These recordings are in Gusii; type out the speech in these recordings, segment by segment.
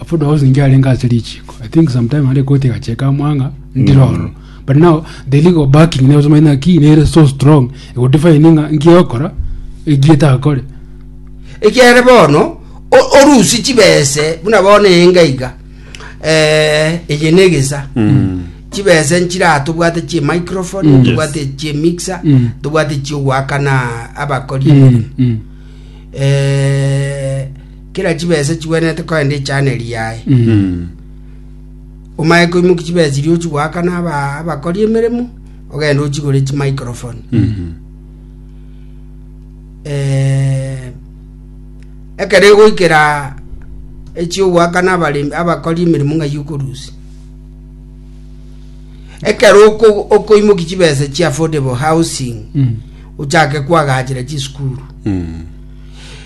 Abwo Doris nigo arenge ase richiiko. I think sometime nare koti egacheka amo ang'a ndire ororo. But now the legal backing nero tomanye ng'a ki nere so strong egodefine ng'a nki ogokora eki etakore. Ekiagera bono o- orusie chibese buna bono enga iga eh, eye na egesa chibese nchira tobwate chie microphone Mm. tobwate chie mixer Mm. tobwate chiogoakana abakori Mm, mm. eh, Kera chibese chigwenerete kogenda echaano eri yaye. Omanye koimokia chibese chiria ochia goakana aba- abakori emeremo, ogende ochigore chimicrophone. Eh, ekero egoikera echiogoakana abaremi abakori emeremo ng'ai okorusia ekero oko- okoimokia chibese chia affordable housing ochake koagachera chisukuru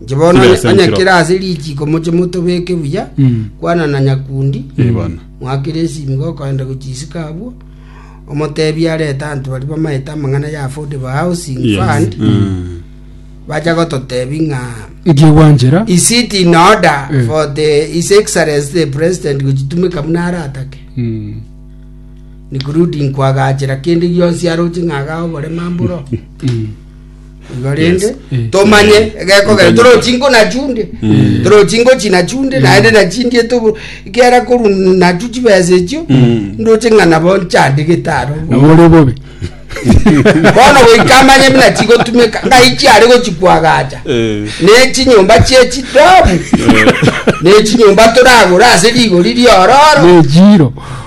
Inche bono Kire ase onye enchera. kere ase richiko moche motobeke buya Mm. kwana na nyakundi Eh, bono. mwakire esimigo okoenda gochisika abwo omotebi arete anto bari bamaete amang'ana ya affordable housing Yes. fund Mm. bacha gototebi ng'a nkigwanchera is it in order Eh. for the his excellency the president gochitumeka buna aratake Mm. including kwagachera kende gionsi aroche ng'aga obore mamburo Mm. Igo rende Yes. Eh. tomanye egekogera torochinko nachunde torochinko chinachunde naende nachindie tobo kera koru nachu chibesa echio ndoche ng'a nabo nchande getaro nabore bobe bono goikamanye buna chigotumeka ngai chiare gochikwagacha Eh. nechinyomba chie chidomu nechinyomba toragora ase rigori riororo nejiro